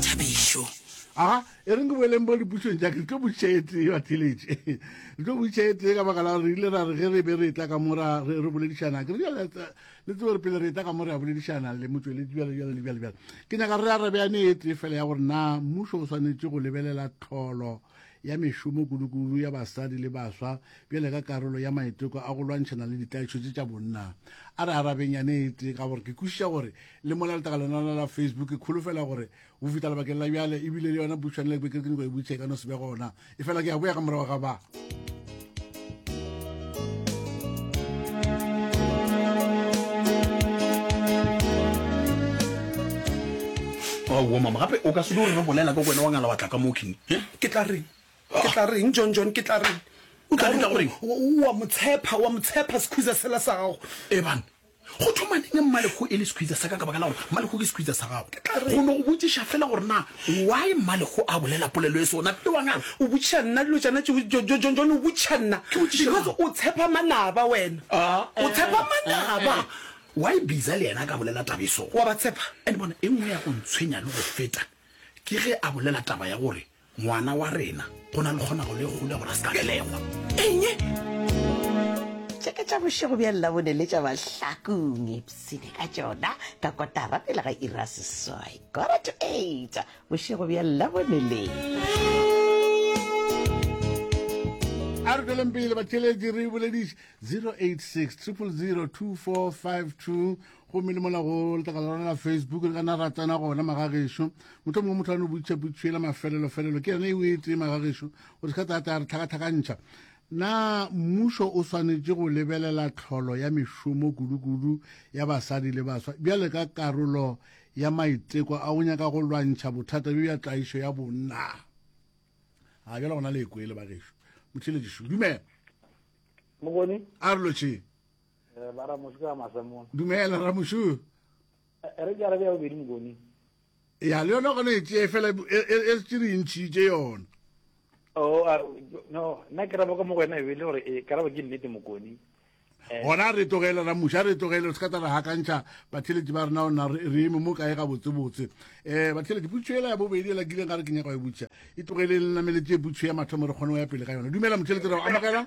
Thabišo. Aga, e reng ke boeleng bo dipušong tša ke, tlo botšiša e tee wa theletše. Re tlo botšiša e tee ka baka la gore re ile ra re ge re be re etla ka mo ra re re boledišana. Ke re jale le tsebe gore pele re etla ka mo re a boledišana le motšweletši bjale bjale le bjale bjale. Ke nyaka re arabeane e tee fela ya gore na mmušo o swanetše go lebelela tlholo ya mešomo kudukudu ya basadi le baswa bjale ka karolo ya maiteko a go lwantšhana le ditlaišo tše tša bonna. A re arabeng yane e tee ka gore ke kwešiša gore le mola letaka lona la la facebook ke kholofela gore o fita lebakeng la bjale ebile le yona butšhwane le beke ke nyako e butšhe ka no se be gona e fela ke ya boya ka morago ga ba aowa mama gape o ka se di gore re bolela ka kwena wa ngala wa tla ka mo king eh? ke tla reng ke tla reng john john ke tla reng o tla reng wa motshepha wa motshepha sekhuza sela sa gago ebane Go thoma neng Mmalego e le sekhwitsa sa ka? Ka baka la gore Mmalego ke sekhwitsa sa gago. Ke tla re. Go no go botšiša fela gore na why Mmalego a bolela polelo e so. Na tle wa ngala. O botšiša nna dilo tšana tšeo, Jo, Jo, John, John, o botšiša nna. Ke botšiše mang? Because o tshepa manaba wena. Ah, eh, O tshepa eh, eh, manaba. eh. Why Biza le yena a ka bolela taba e so? Wa ba tshepa? And bona, e nngwe ya go ntshwenya le go feta ke ge a bolela taba ya gore Ngwana wa rena go na le kgonago le kgolo ya gore a se ka belegwa. Eng? Tše ka tša bošego bja Labone le tša Mahlakong, ipshine ka tšona ka kotara pele ga iri ya seswai, quarter to eight, bošego bja Labone le. a re tšweleng pele batheletši re bolediše 086 000 2452 gomme le mona go letlakala lona la facebook le kana ra tsena gona magagešo motlho mongwe motho a no butšha butšhela mafelelofelelo ke yone e o e tee magagešo o se ka tata re tlhakatlhakantšha na mmušo o swanetše go lebelela tlholo ya mešomo kudukudu ya basadi le baswa bjale ka karolo ya maiteko a go nyaka go lwantšha bothata bjo bja tlaišo ya bonna a bjale gona le ekwele bagešo motheletši šo dumela a re lotšheng Eh, ba ramoši ka masamong dumela ramošu eh, re ke arabe ya bobedi mokoni ya le yona gone e tsee fela e, e, e se re ntšhitše yona oh, ah, no nna ke rabo ka mo go wena ebele gore e karabo ke nnete mokoni eh. gona re tlogele ramuša a re tlogele re se ka tsa re gakantšha batheletši ba rena ona re eme mo kae gabotsebotse um batheletši putšho ela ya bobedi ela kileng ga re ke nyaka go e butša e tlogeleng le nameletse e putšho ya mathomo re kgone go ya pele ka yona dumela motheletši re amogela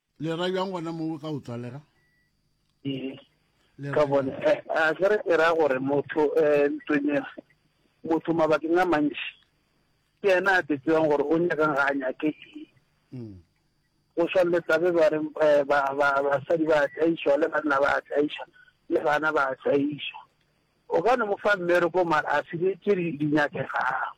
le ra bjang gona mo ka o tswalega ka bone eh, a ke re ke ra gore motho um eh, ntonyena motho mabakeng a mantši ke ena a tetsewang gore o nyakang ga a nyake mm. o swanletsa be ba re eh, basadi ba atlaišwa le banna ba atlaiša le bana ba atlaiša o ka ne mo fa mmereko mara a sebetse di nyakegang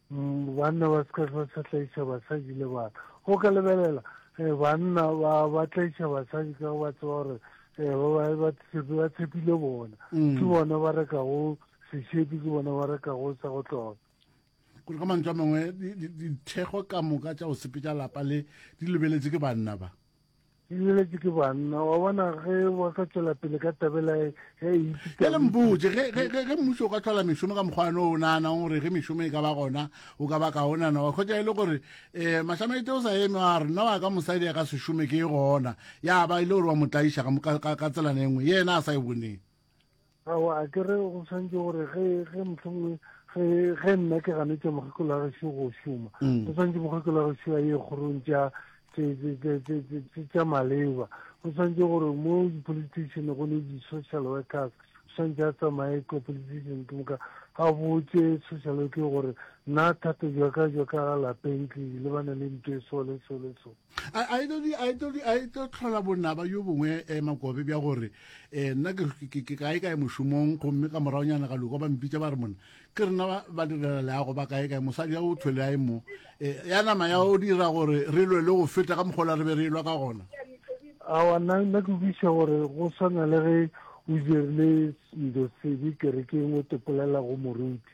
Banna ba se ka hlwa sa tlaiša basadi le bana. O ka lebelela eh, banna ba ba tlaiša basadi ka ba tseba gore eh, ba ba ba tshepi- ba tshepile bona Mm. ke bona ba rekago sešepi ke bona ba rekago sa go tloga gore ka mantswe a mangwe di- di- dithekgo ka moka tša go sepetša lapa le di lebeletse ke banna ba Ke leletše ke banna, wa bona ge ba ka tšwela pele ka tabela ya e ipitsa. Bjale mpotše, ge, ge, ge, ge mmušo o ka tlhola mešomo ka mokgwa no o naganang gore ge mešomo e ka ba gona o ka ba kaonana wa kgotsa e le gore um mahlamaete o sa eme wa re nna wa ka mosadi a ka se šome ke e gona ya ba e le gore wa mo tlaiša ka, ka, ka tselana e nngwe ye yena a sa e boneng. awa a ke re go tshwanetse gore ge ge mohlomongwe ge ge nna ke ganetša mokgekolo a gešo go šoma go mm. tshwanetse mokgekolo a gešo a ye kgorong tša tša maleba go tshwanetse gore mo di-politician go ne di-social workers tshwanetse a tsamaye ko politician ke moka a botse social worke gore nna thata jaka jaka ga lapeng ke lebane le nto e so le so le so a e tlo tlhola bonaba yo bongwe um makobe bja gore um nna ke kae kae mošomong gomme ka moraonyana ga loko ba mpitša ba re mona ke rena ba direla leago ba kae kae mosadi ya o thwele a e mo um ya nama ya o dira gore re lwe le go feta ka mokgola re be re lwa ka gona awa nna nna ke buisa gore go swana le ge o dirile selo sebe kerekeng o topolela go moruti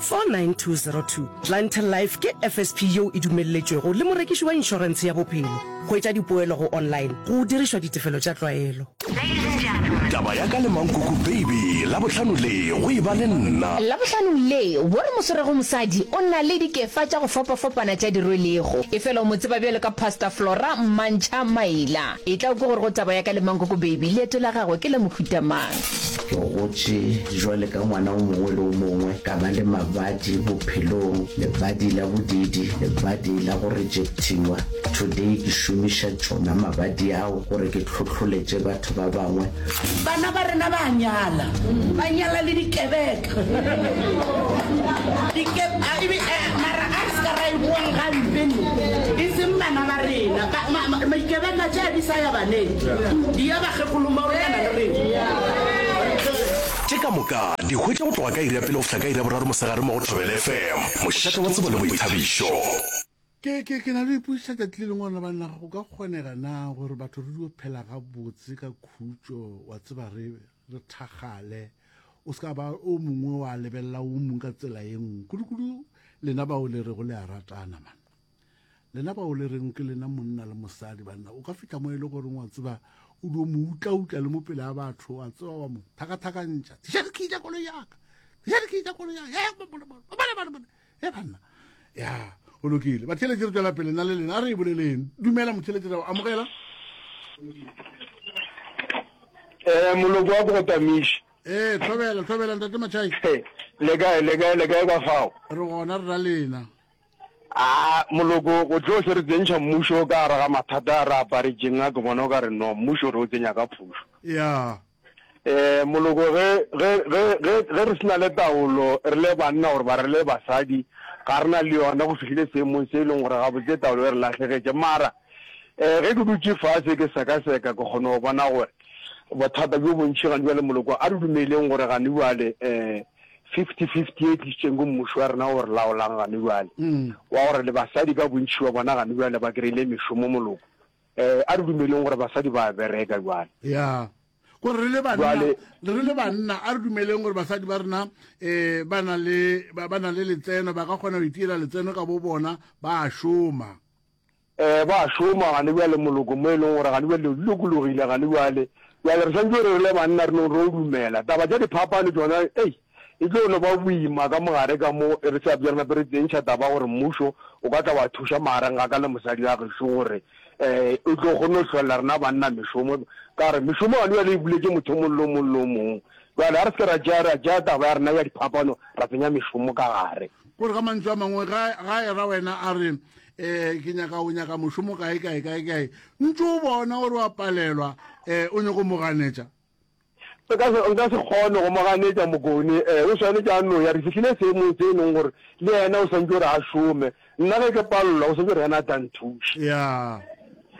49202, Clientele Life ke FSP yeo e dumelletšwego le morekiši wa inšorentshe ya bophelo. Hwetša dipoelo go online go dirišwa ditefelo tša tlwaelo. Taba ya ka le Mankuku Baby Labohlano le go e ba le nna. Labohlano le go re moswerego mosadi o na le dikefa tša go fapafapana tša di rwelego. Efela o mo tseba bjalo ka Pastor Flora Mmantšha Maila. Etla o kwe gore go Taba ya ka le Mankuku Baby leeto la gagwe ke la mohuta mang. Ke gotše bjale ka ngwana o mongwe le o mongwe, ka ba le mabadi bophelong, lebadi la bodiidi, lebadi la go rejectiwa. Today ke šomiša tšona mabadi ao gore ke hlohloletše batho ba bangwe. Bana ba rena ba a nyala, ba nyala le dikebeka. Mara a re se ka ra e boang gampe ne, e seng bana ba rena, dikebeka tše di sa ya baneng, di ya bakgekolommagolo ba na le rena. Tše ka moka di hwetša go tloga ka iri ya pele go fihla ka iri ya boraro mosegare mo go Thobela FM, mošate wa tsebo le boithabišo. Ke, ke, ke na le go ipotšiša tšatši le lengwe gore banna go ka kgonega na gore batho re dio phela gabotse ka khutšo, wa tseba, re, re thakgale, o se ka ba o mongwe wa lebelela o mongwe ka tsela ye nngwe, kudukudu lena bao le rego le a ratana, man. Lena bao le reng ke lena monna le mosadi banna o ka fihla mo e le goreng wa tseba o dio mo utlautla le mo pele a batho wa tseba wa mo thakathakantša diša dikhi tša kolo yaka diša dikhi tša kolo yaka e banna ya o lokile batheletši re tswela pele na le lena a re e boleleng dumela motheletši ra o amogela um moloko wa bogotamiši ee tlhobela tlhobela ntate matšhai le kae le kae le kae ka fao re gona re ra lena A moloko go tlo se re tsentšha mmušo ka gare ga mathata a re aparetšeng a ke bona o ka re no mmušo re o tsenya ka phušo. Yeah. E moloko ge ge ge ge ge re sena le taolo re le banna gore ba re le basadi ga rena le yona go fihlile seemong se e leng gore ga botse taolo e re lahlegetše mara eh ge ke dutše fase ke sekaseka ke kgone go bona gore bothata bjo bontšhi gane bjale moloko a re dumeleng gore gane bjale eh fifty fifty e tlisitseng go mmušo wa rena o re laolang gane bjale mm. wa gore le basadi ka bontšhi wa bona gane bjale ba kry-ile mešomo moloko um a re dumeleng gore basadi ba bereka jale ya gore re le banna re le banna a re dumeleng gore basadi ba rena um ba na le letseno ba ka kgona go itiela letseno ka bo bona ba a šoma Ee, ba a šoma gane bjale moloko mo e leng gore gane bjale dilo di lokologile gane bjale. Bjale re swantšwe re rile banna re no re o dumela. Taba tša diphapano tšona ei, e tlo no ba boima ka mogare ka mo, e re sa bja re nape re tsentšha taba gore mmušo o ka tla wa thuša magareng ga ka le mosadi wa gešo gore um o tlo kgone go hlolela rena banna mešomo. Ka gore mešomo gane bjale e buletše motho o mong le o mong le o mong. Bjale ga re se ke ra tšea ra tšea taba ya rena ya diphapano ra tsenya mešomo ka gare. Gore ka mantšu a mangwe ga, ga era wena a re um ke nyaka o nyaka mošomo kae kae kae kae ntse o bona gore wa palelwa um o nyako moganetša nka se kgone go moganetša mokone um eh, o swanetše a noya re fitlhile seemong se e leng gore le yena o swantse gore a šome nna ge ke palelwa o swantse gore yena a tla nthuša ya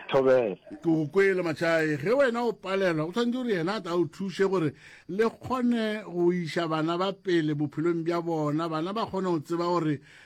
thobela ke o kwele matšhae ge wena o palelwa o tshwanetse gore yena a tla o thuse gore le kgone go iša bana ba pele bophelong bja bona bana ba kgone go tseba gore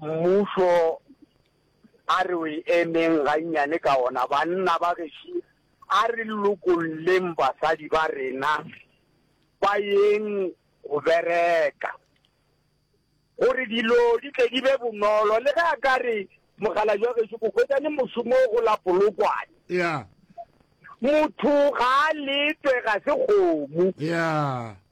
Mmušo a re o e emeng gannyane ka ona. Banna ba geši a re lokolleng basadi ba rena ba yeng go bereka gore dilo di tle di be bonolo. Le ge a ka re mokgalabje wa geši o hwetša le mošomo go la Polokwane. Yeah. Motho ga a letwe ga se kgomo. Yeah.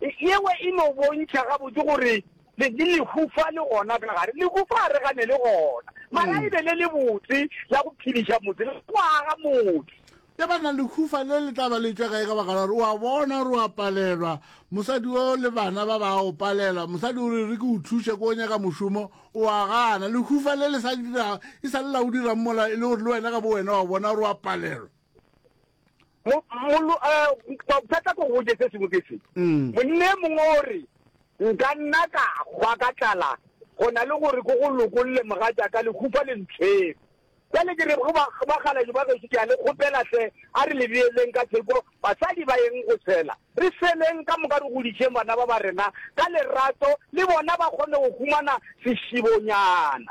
Yeo e no bontšha gabotse gore le le lehufa le gona ka gare. Lehufa ga re gane le gona, mara e be le le botse la go phediša motse le go aga motse. Ge ba na lehufa le le tla ba le tšwa kae ka baka la gore o a bona gore o a palelwa, mosadi o le bana ba ba o palela. Mosadi o re, re ke o thuše ko o nyaka mošomo, o a gana. Lehufa le le sa dira, e sa le la o dirang mola e le gore le wena ka bowena o a bona gore o a palelwa. bothata ko goje se sengwe ke se mm. monne mongwe o re nka nna ka hwa ka tlala go na le gore ko go lokolole moga jaaka le khufa le ntshwere jale ke re go bagalajo ba gešo ke a le kgopela tle a re le beeleng ka theko basadi ba yeng go tshela re seleng ka moka re godišeng bana ba ba rena ka lerato le bona ba kgone go humana sešibonyana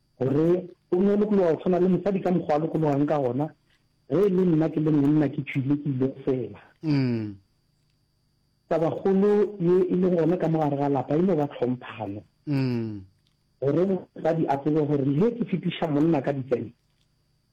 Gore o nne o lokologa o tshwana le mosadi ka mokgwa a lokologang ka gona, ge e le nna ke le monna ke tšhwile ke ile go fela. Tabakgolo ye e lego gona ka mo gare ga lapa e no ba tlhomphano, gore mosadi a tsebe gore le ge ke fetiša monna ka ditsebe,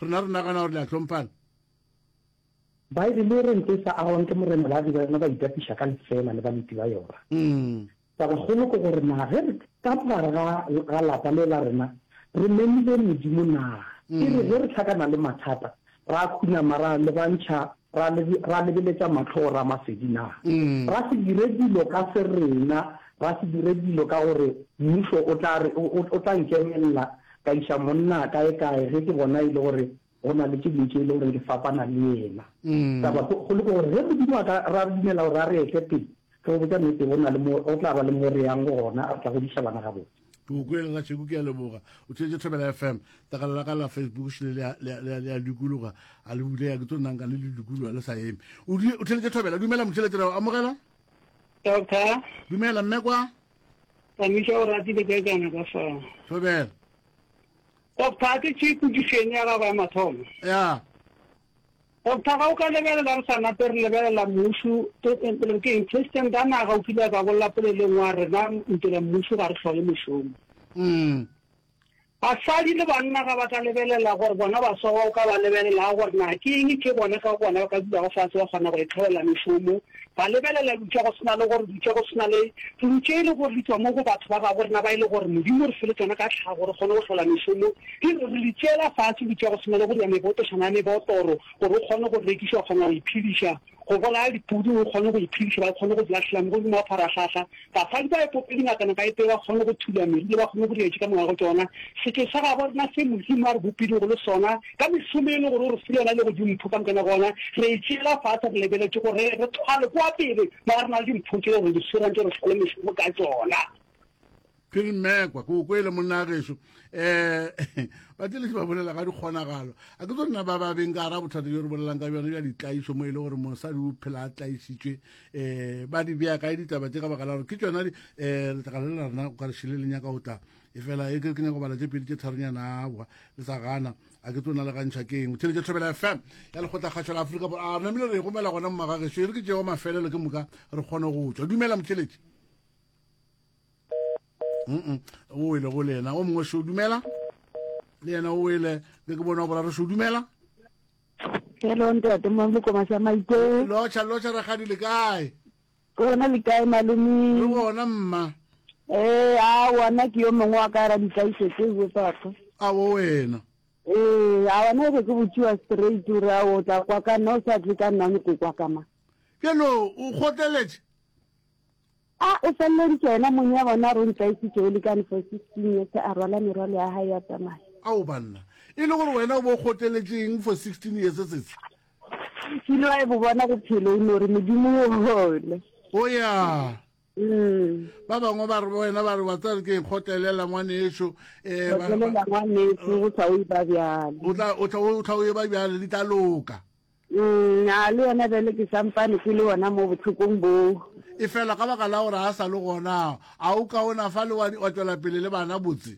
Rena re nagana gore le a hlomphana. Baebele e re nto e sa agwang ke morena ba be ba yona ba itapiša ka lefeela le baleti ba yona. Tabakgolo ke gore na ge re ka mogare ga, ga lapa le la rena re memile Modimo na? E re ge re hlakana le mathata, ra khunama ra lebantšha Ra, ra lebeletša mahlo go Ramasedi na? Ra se dire dilo ka serena, ra se dire dilo ka gore mmušo o tla re, o, o tla nkemelela, ka iša monna kaekae ge ke bona e le gore go na le tše ding tše e le gore di fapana le yena. Taba go, go le gore ge Modimo a ka, ra dumela gore a re etle pele, re go botša nnete, go na le mo, go tla ba le mo re yang gona, re tla godiša bana gabotse. Tukweng ga tšheku ke a leboga o tšwetše thobela fm takala la ka la facebook šile le a dikologa a le bulega ke tso nanka le le dikologa le sa eme o tšwetše thobela dumela motšhelete o amogela doctor dumela mme kwa tsamisa o ratile ka kana ka fa thobela doctor ke tšhe kudišeng ya gago ya mathomo ya Go phaga o ka lebelela re sa nape re lebelela mmušu re re ke eng, President a naga o kile a ka bolela poleleng wa rena ntele mmušu ga re hlole mošomo. Basadi le banna ga ba ka lebelela gore bona ba sogwa o ka ba lebelelaa gore na ke eng ke bona ka gona ba ka dulago fase ba kgona go itlholela mešomo Ba lebelela eupša go se na le gore eupša go se na le pelo tše e le gore di tšwa mo go batho ba gabo rena ba e le gore Modimo re fe le tšona ka tlhago re kgone go hlola mešomo, di re re di tšeela fase eupša go se na le go dira mebotošana ya mebotoro gore o kgone go rekiša o kgona go iphediša, go bolaya dipudi o kgone go iphediša ba kgone go di lahlela mo godimo ga pharahlahla. Basadi ba epopedi ngatana ba epeye ba kgone go thula medu le ba kgone go dira tše ka moka go tšona. Setšo sa gabo rena se Modimo a re bopilego le sona ka mesomo ye e le gore o re file yona e lego dimpho ka moka gona re e tšeela fase re lebeletše gore re thwale kua pele mola re na le dimpho tše gore di swerantše re fale mešomo ka tšona. Phiri Mmekwa, ke o kwele monna gešo. Um ba tšeletse ba bolela ga dikgonagalo. A ke tso nna ba ba beng ka gara bothata jo re bolelang ka bjone bja ditlaišo mo e le gore mosadi o phela a tlaišitšwe um ba di bea kae ditaba tše ka baka la gore ke tsona um letlakala le la rena o ka re šile le nyaka go tla e fela e ke ke nyako bala tše pedi tše tharonyana boa le sa gana a ke tsona le gantšha ke eng theletše thobela fm ya lekgotla kgašo la aforika bor a namile re gomela gona mmagageso e re ke tšeo mafelelo ke moka re kgone go tswa dumela motheletše mm o wele go le yena o mongwe se o dumela le yena o wele ke ke bona o boraro se o dumela Hello ntate mo mokomasha maite. Locha locha rakgadi le kae? Ke gona le kae malome? Re gona mma. Eh a wona ke yo mongwe wa ka ra di tlaise ke go papa. A wo wena. Eh a wona re ke botšiwa straight re a o tla kwa ka no sa tle ka nna ni kwa ka ma. Ke lo o goteletse. A o feleleditše yena mong ya bona a re o ntlaetšitše o le ka ntle 16 years a rwala merwalo ya gae ya tsamaya. Ao banna. E le gore wena o bo o kgotleletše eng for 16 years setshe? Kile wa e bo bona bophelo o no re Modimo o hole. O ya. Umm. Ba bangwe ba re wena ba re wa tseba ke kgotlelela ngwaneso. Eh, ba re. Kgotlelela ngwaneso go tla o e ba bjalo. O tla o tla o tla o e ba bjalo di tla loka. Nna le yena bjale ke sampane ke le gona mo bohlokong boo. Efela ka baka la gore a sa le gona, a o kaonafale wa wa tšwela pele le bana botse?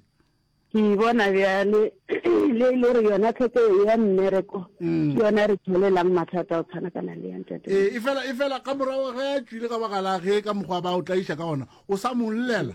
Ke bona bjale le e le gore yona tlhoko ye ya mmereko ke yona e re tšwelelang mathata a go tshwanakana le ya ntate. Ee, efela efela ka morago ge a tšwile ka baka la ge ka mokgwa ba o tlaiša ka ona, o sa mo llela.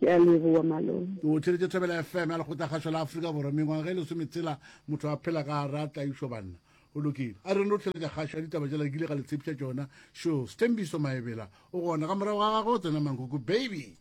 Ke a leboa malome. O tšweletše Thobela FM ya Lekgotlakgašo la Afrika Borwa. Mengwaga e lesometshela motho a phela ka gare a tlaišo banna. Go lokile. A re no tlheletša kgašo ya ditaba jela kile ga le tshepiša tšona. Sure. Sthembiso Maebela o gona ka morago ga gagwe o tsena mankoko baby.